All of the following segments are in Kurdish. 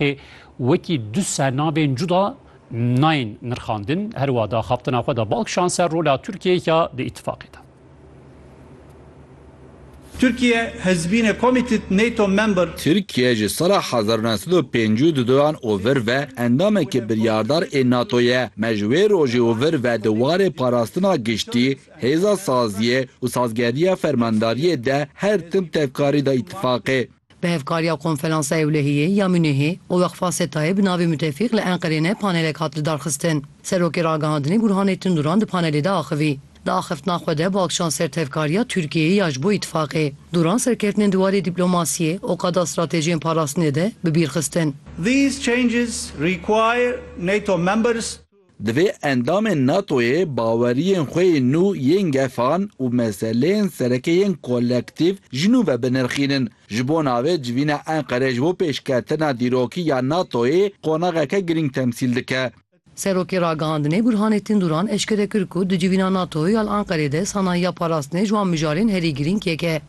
Ê wekî du sernavên cuda nayên nirxandin, her wiha di axaftina xwe de bal kişand ser rola Tirkiyeyê ya di îtîfaqê de. Türkiye has been a committed NATO member. Tirkiye ji sala hezar û neh sed û pêncî û duan û vir ve endamekî biryardar ê NATO ye. Me ji wê rojê û vir ve di warê parastina giştî, hêza saziyê û sazgerdiya fermandariyê de her tim tevkarî da îtîfaqê. Bi hevkariya Konferansa Ewlehiyê ya Munihê û Weqfa SETA'yê bi navê Mutefîq li Enqerê ne panelek hat lidarxistin. Serokê Ragihandinê Gurhanê Tunduran di panelê de axivî. Di axiftina xwe de baaxşan ser tevkariya Tirkiyeyê ya ji bo Îtîfaqê. Duran serkeftinên di warê dîplomasiyê û qada stratejiyên parastinê de bi bîr xistin. Divê endamên NATO'yê baweriyên xwe yên nû yên gefan û meseleyên sereke yên kolektîv ji nû ve binirxînin. Ji bo navê civîna Enqereyê ji bo pêşketina dîrokî ya NATO'yê qonaxeke girîng temsîl dike. Serokê Ragihandinê Burhanettin Duran eşkere kir ku di civîna NATO'yê ya li Enqereyê de sanayiya parastinê ji wan mijarên herî girîng yek e.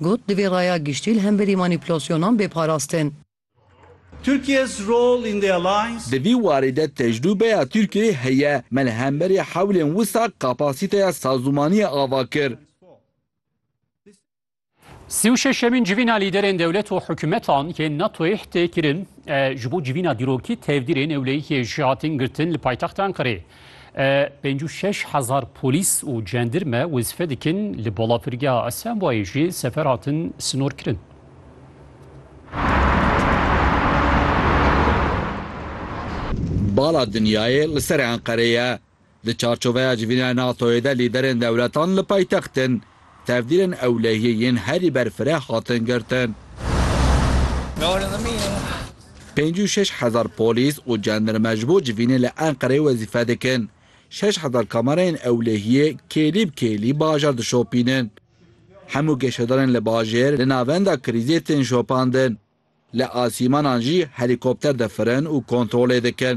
Got, Divê raya giştî li hemberî manîpulasyonan bê parastin. Di vî warê de tecrûbeya Tirkiyeyê heye. Me li hemberî hewlên wisa kapasîteya sazûmaniyê ava kir. Sî û şeşemîn civîna lîderên dewlet û hikûmetan yên NATO'yê tê kirin. Ji bo civîna dîrokî tevdîrên ewlehiyê ji hatin girtin li paytexta Enqereyê. Pênc û şeş hezar polîs û cendirme wezîfe dikin li balafirgeha Asembayê jî sefer hatin sinorkirin. Bala dinyayê li serê Enqerê ye. Di çarçoveya civînaya NATO'yê de lîderên dewletan li paytextin Tevdîrên ewlehiyê yên herî ber fireh hatin girtin. Pêncî û şeş hezar polîs û cendirme ji bo civînê li Enqereyê wezîfe dikin. Şeş hezar kamerayên ewlehiyê kêlî bi kêlî bajar dişopînin. Hemû geşedarên li bajêr li navenda krîzê tên şopandin. Li asîmanan jî helîkopter difirin û kontrolê dikin.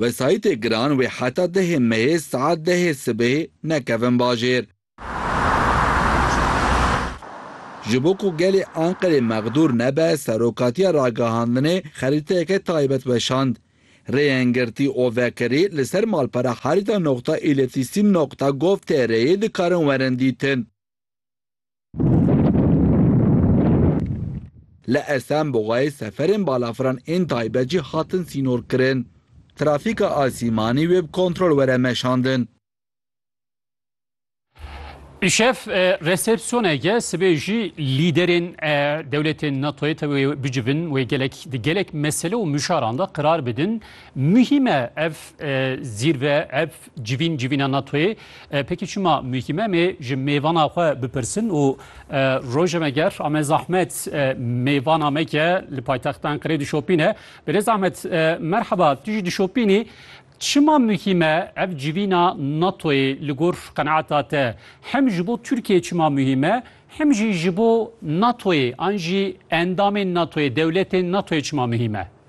Wesayîtê giran wê heta dehê meyê saet dehê sibê nekevin bajêr. Ji bo ku gelê Anqerê mexdûr nebe Serokatiya Ragihandinê xerîteyeke taybet weşand. Rêyên girtî û vekirî li ser malpera Harita nokta îletîsîm nokta gov tr'ê dikarin werin dîtin. Li Esenboxayê seferên balafiran ên taybet jî hatin sînorkirin. Trafîka asîmanî wê bi kontrol were meşandin. Îşev resepsiyoneke sibê jî lîderên dewletên NATO'yê tevê bicivin wê gelek di gelek mesele û mişaran de qirar bidin. Muhîm e ev zîrve, ev Civîn civîna NATOyê pêkî çima muhîm em ê ji mêvana xwe bipirsin û roje me ger ame zahmet mêvana me ke li paytexta Enqerê dişopîne. Birêz Ahmet merheba tu jî dişopînî çima muhîm e ev civîna NATOyê li gor qeneata te hem ji bo Tirkiyeyê çima muhîm e hem jî ji bo NATOyê an jî endamên NATOyê dewletên NATOyê çima muhîm e?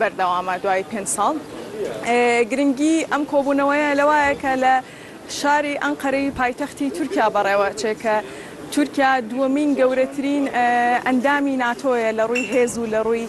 Berdewam e duayî pênc sal. Giringî em kobûneweye li wa ye ke li şarî Enqereyî paytextî Tirkîya berewe çê ke Tirkîya duwemîn gewretirîn endamî NATO'ye li rûyî hêz û li rûyî